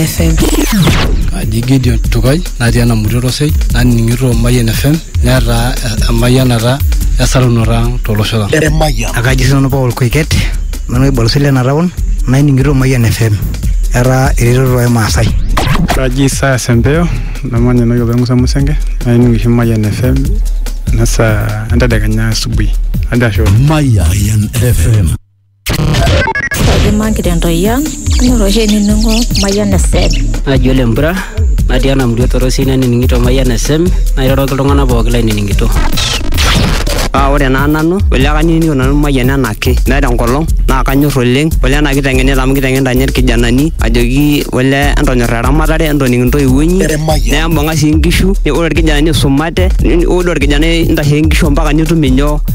FM. Kaji Gideon Tukai natii ena murua Orosei naning'ito Mayian FM netaa emayianata esarunoto ang tolosho lang. Emayian. Akaji sinanu Paul Koiket nanu oibalosi lena taon naining'ito Mayian FM etaa eretoto ai Maasai. Kaji Isaya Sempeo namanya enewueji opa Musa Musenge naining oshi Mayian FM nasa entedekenya asubuhi. Ajo ashe oleng. Mayian FM. Kaimaki tentoyian, kanyor oshi ainining'o Mayian FM. Naji ole Mpura, natii ena murua torosi nanining'ito Mayian FM, nairoroki iltung'anak pooki lainining'ito. Paa ore naa nanu, ole kanining'ito nanu Mayian enaake. Meeta enkolong naa kanyor oleng, ole ena kiteng'enita amu kiteng'enita ninye irkijanani ajoki ole entonyora eramatare, entoning intoiwuo inyi, nembung'a sii nkishu, ore irkijanani isumate, ore orkijanai intasheki nkishu ompaka nitum inyoo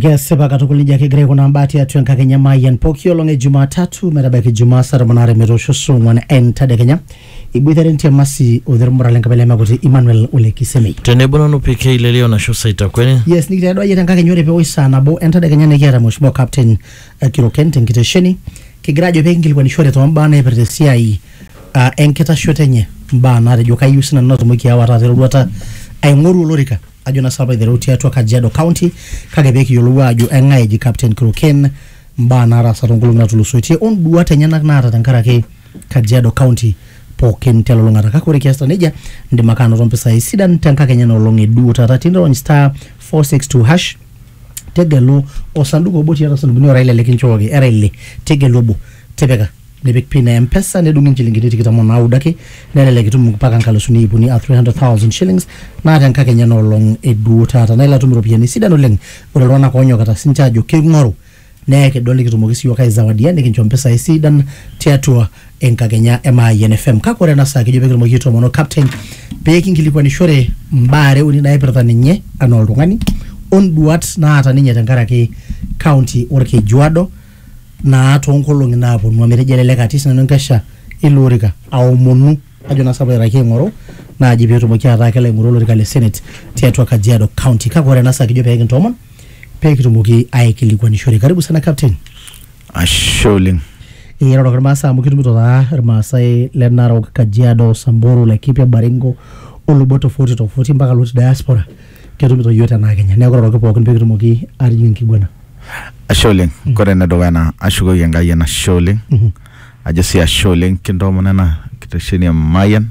Kesipa katukul nejia kegira aikunaa mbaa tiatua enkakenya e Mayian pooki olong e Jumatatu metabaiki Ijumaa saa tomon aare metoosho saa ong'uan entadekenya. Iboitare Ntiamasi Odher Murra le Nkabila e Makoti Emmanuel Ole Kisemei. Tenebo nanu PK Lelio Nasho Saitakwene. Yes, nikitedo ayie tenkakenya ore pewosh saa nabo entadekenya nikiata Mheshimiwa Captain eh, Kiroken tenkitesheni kigira ajo pekinkilikuanishore tombaa naipirta esiai ah, enkitashoto enye mbaa natejo kayieu sinanu natumoki aawa taata eroruata aing'oru olorika ajo na sapa aiteru tiatua Kajiado County kake pee kiyiolou ajo eng'ae eji Captain Kiroken mbaa naataasa toonkolong'i natulusoitie onduat enyenak naata tenkaraki Kajiado County pookin telulung'ata kake ore kiasita nejia indim ake anoto mpisai sidan tenkakenya ena olong e duo taata tinirony star 462 hash tegelu osanduku obo tiatua sandukuni ora ile likinchooki era ile tegelu obo tipika nipik pin e mpesa nedung'i inchilingini tikitam o naudo ake nelelek itum mpaka nkalusuni iip uni a 300,000 shillings naa tenkakenya ena olong e duo taata naa ilo atum iropiyiani sidan oleng ore iltung'anak oonyokita sinche aajo keing'oru naa ekidol nikitumoki siiyiook aizawadia nikincho mpisai sidan tiatua enkakenya e Mayian FM kake ore ena saa kejo pekitumoki aitoomono captain pekinkilikuanishore mbaa are uni naipirta ninye anaa oltung'ani onduat naata ninye tenkaraki county orkejuado naa toonkolong'i naaponu amu etejo elelek atii sinanu enkesha ilo orika aomonu ajo naa sapu airraki aing'oru naaji peetumoki ataa kelo aing'oru olorika le senate tiatua Kajiado county kake ore ena saa kijo peekintoomon peekitumoki aikilikuanishore karibu sana captain Ashe oleng. iroroki irmaasai amu kitumito taa irmaasai le Narok Kajiado Samburu Laikipia Baringo o lubot tofauti tofauti mpaka lotii diaspora ketumito iyiook tenaa kenya neeku iroroki pookin pekitumoki atijing enkiguana ashe oleng kore enedukuya naa ashukoki enkai enashe oleng ajo sii ashe oleng kintoomon ena kitesheni e Mayian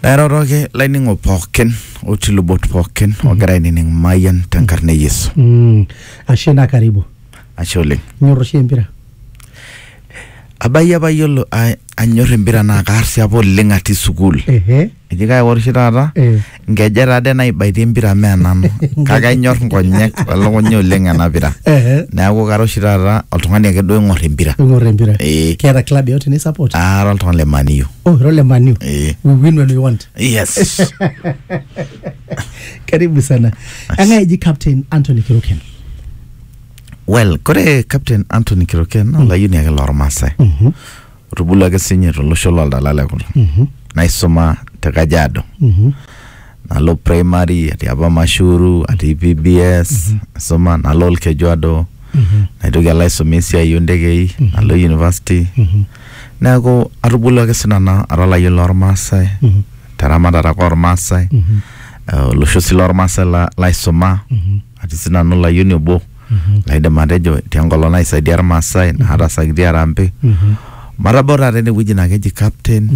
nairoroki laining'ok pookin otii lubot pookin ogira ainining Mayian tenkarna e Yesu Mm, ashe naa karibu ashe oleng inyor oshi empira abayie apa yiolo a- anyor empira naa kaar sii apa oleng atii sukuul ehe Eji kake ore oshi taata Eh. nkeje taade naibaitie empira mee nanu kake anyor nkonyek elukunya oleng ena pira Eh. neeku kara oshi taata oltung'ani ake duo oing'or empira Ing'or empira. Eh. Keeta club yote ni support. ara oltung'ani le Man U. Oh, ira ole Man U. Eh. We win when we want. yes Karibu sana. Eng'ae eji captain Anthony Kiruken. well kore captain Anthony Kiroken naa olayioni ake lormaasai Mhm. otubulua ake sinye tolosho loldala le kulo Mhm. naisuma te Kajiado Mhm. nalo primary atii apa Mashuru atii PBS naisuma nalo Olkejuado Mhm. naitoki alo aisuma esiai ontekei nalo university Mhm. neeku atubulua ake sinanu ara olayioni lormaasai Mhm. te ramatare ake ormaasai Mhm. eh, olosho sii lormaasai la- laisuma Mhm. atii sinanu olayioni obo laidim atejo tenkolong naisaidia irmaasai naatasakitia arambe matabau taata enewueji naa keji captain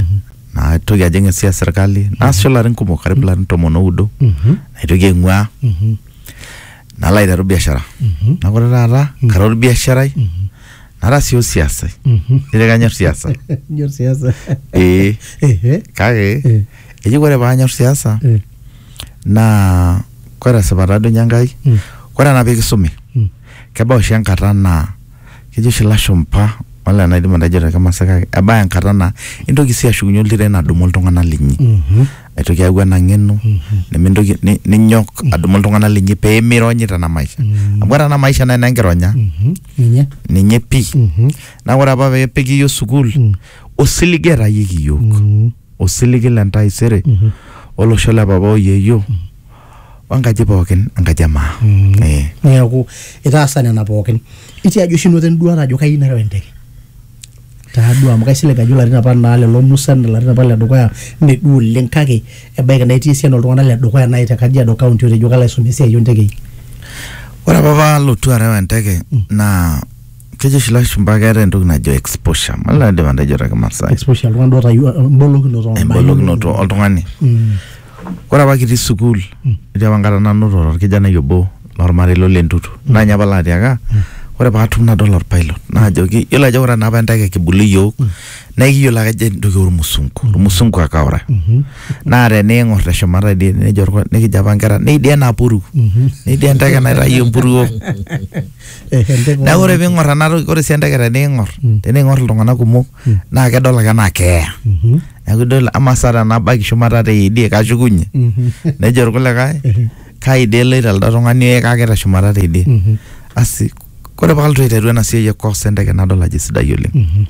naitoki ajing esiai esirkali naasisho ilarin kumok karibu ilarin tomon oudo naitoki aing'uaa nalo aiteru biashara neeku ore taata kara orbiasharai nara sii osiasai ijio kanyor siasa Nyor siasa. ee Ehe. kake eji ore paanyor siasa Eh. naa kore esipata duo ninye Enkai kore ena pikisumi kebau oshi enkata naa kejo oshi ilashumpa wala enaidim atejo te Kimasai kake ebaya enkata naa intoki sii ashukunye oltiren adumu iltung'anak linyi aitoki ayau ena ng'eno nemintoki ni- ninyok adumu iltung'anak linyi pemironyi tena maisha amu ore ena maisha naa enenkironya ninye ninye pii naa ore apa peepiki iyiok sukuul osiligi etayieki iyiok osiligi le ntaisere olosho le papa o yeyio o enkaji pookin enkaji e maa. Eh. neeku itaasa nena pookin itiaji oshi inoto enduata ajo kayieu nareu enteke taaduo amu kaisilig ajo ilarin apa naa lelo musan ilarin apa ledukuya mme duo oleng kake ebaiki naa etii esiana oltung'anak ledukuya naaji te kajiado county otejo kalo aisomea esiai ontekei Ore apa palotu areu enteke naa kejo oshi ilashumba keeta entoki najo exposure mala aidim atejo te kimasai exposure oltung'ani duo otayiolo embolokinoto ombaa embolokinoto inonok. oltung'ani Mm, ore apa kitii sukuul etii apa enkata nanoto orkijanai obo lormarei lo lentutu naa ninye apa laatiaka ore paatum nadol orpilot naajoki yiolo ajo ore naapa enteke kibulu iyiok naa ekiyiolo ake ajo entoki ormusungu ormusungu ake ora mhm, naa teniing'or teshumata idie nejo orko- nikijo apa inkera neidie enapuruo mhm. neidie enteke naitayio empuruo Eh, enteke oo neeku ore ntokitin. piing'or ena toki ore sii enteke teniing'or Mm. teniing'or iltung'anak kumok Mm. naa kedol ake enaa keeya Mhm, neeku idol ama sa tenabaiki shumata teidie kashukunye mhm, nejo irkulikae ehe, kai dii eloito elde tung'ani ee kake teshumata teidie mhm, asi kore palotu aiteru ena siai e course enteke nadol ajo sidai oleng mhm,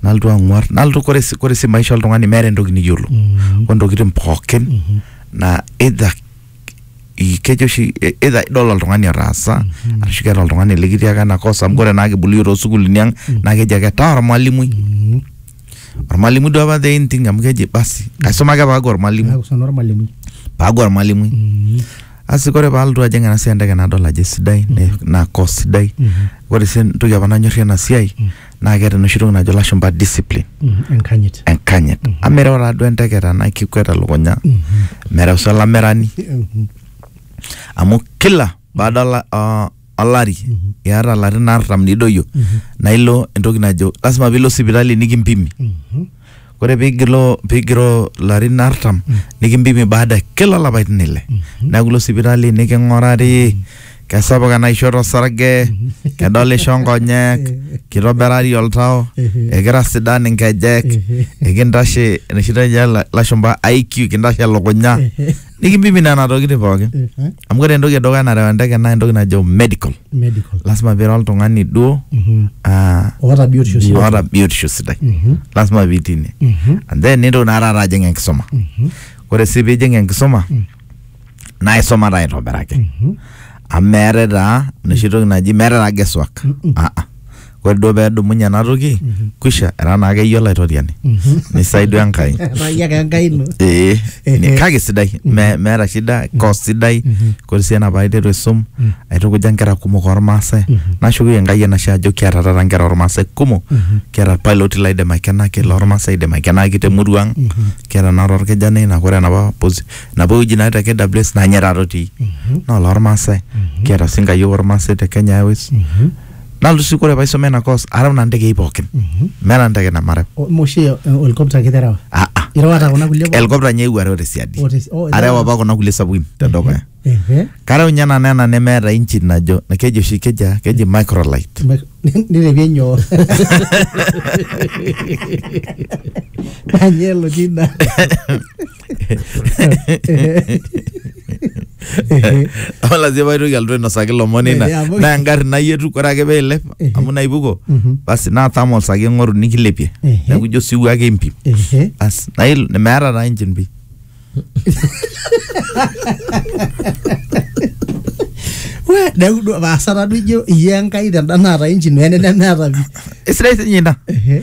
nalotu ang'uar nalotu kore si- kore si maisha oltung'ani meeta entoki niyiolo mhm, ontokitin pookin mhm. na either i- kejo oshi e- either idol oltung'ani otaasa arashu keeta oltung'ani likitiaka ena kosa amu ore naa kibulu iyiook toosukulini ang naa keji ake taa ormalimui Mm. ormalimui duo apa the in thing amu keji basi aisuma ake paaku ormalimui Neaku sana ormalimui. paaku ormalimui Mm. asi kore paalotu ajing ena siai enteke nadol ajo sidai ne- naa kos sidai Mhm. ore sii entoki apa nanyorrie ena siai naa keeta enoshi toki najo lashumpa discipline Mhm, enkanyit enkanyit amu mereu taaduo enteke tenaa kikwet elukunya mereu sii olamerani Mhm, amu kila baada ola- o- olari iata ilarin artam nidoyio naa ilo entoki najo lasima piilo sipitali nikimpimi mhm, ore pigilo pigiro larin artam nikimpimi baada ya kila lapaitin ile neeku ilo sipitali niking'urari kesapuk enaishoto osarge kedolisho nkonyek kitobirari oltau ekira sidan inkejek ekintashe enoshi najo la- lashumpa IQ kintashe elukunya nikibibi nena tokitin pookin Eh, eh, amu ore entoki edukuya narew enteke naa entoki najo medical medical lasima pira oltung'ani duo Mhm. ah, oota biotisho sidai. oota biotisho sidai Mhm. lasima pitii ine Mhm. and then nintoki naa taata ajing enkisuma Mhm. ore sii pijing enkisuma naa isuma taa aitobiraki Mhm. amu meetae taa enoshi toki naji meetae taa guesswork Ah, ah. ore duo pee edumunye ena toki kwisha era naake iyie olaitoriani nisaidia Enkai etaa iyie ake enkai ino ee Ehe. ni- kake sidai me- meeta shida kos sidai kore sii ena paaiteru aisum aitukuja nkera kumok ormaasai nashukoki Enkai enashe ajo kiata taata nkera ormaasai kumok kiata irpailoti laidim aikenaki lormaasai aidim aikenaki temurua ang kiata naa torkijanai naa kore enapa posi enapa wueji natii te KWS naa ninye taata otii naa olormaasai kiata sii nkayiok ormaasai te Kenya Airways nalotu sii kore paisoma ina course arau nena ndegei pookin meeta ndege nemareu O- moshe eh, olkopta ake terewa Ah, ah. irewata kuna kulie pookin? helikopta nye eewuo areu tesiadi Oh, tesi- oh, areu erewa. apa kuna kulie sapukin tedukuya Ehe. kareu nye nanu ena nemeeta engine najo keji oshi keji ah, keji microlight Mek- nirepie nyoo nanye elotii ina amu lazima paitoki alotu ainosaki lomon ina Eh, amu- naa engarri nayietu ore ake peilep Ehe. amu naipuko Mhm. basi natama olsaki eng'oru nikilepie Ehe. neeku ijo siwuo ake impim Ehe. bas nail meeta taa engine pi We, neeku duo paasa taduo ijo iyie enkai tenda naata engine wene nemeeta pi esidai sinye ina Ehe.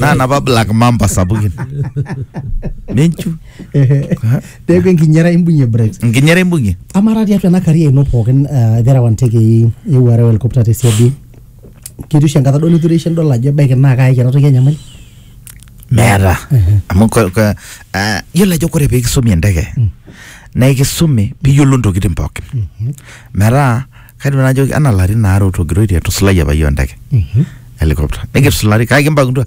naa napa black mamba sapukin menchu Ehe. peeku enkinyera imbung'ie breaks nkinyera imbung'ie amara tiatua ena karia ino pookin eh, terewa ntekei eewuo areu helikopta tesiadi ketii oshi enkata duo nitureishe nidol ajo ebaiki naa kaayaki ena toki enyamali meeta amu ko- ko- ah, yiolo ajo kore peekisumi enteke naa ekisumi piyiolo ntokitin pookin metaa kaidim nanu najoki anaa larin aare otogiroitie etusulaiye apa iyiook enteke helicopter nikitusulari kake kimbakundua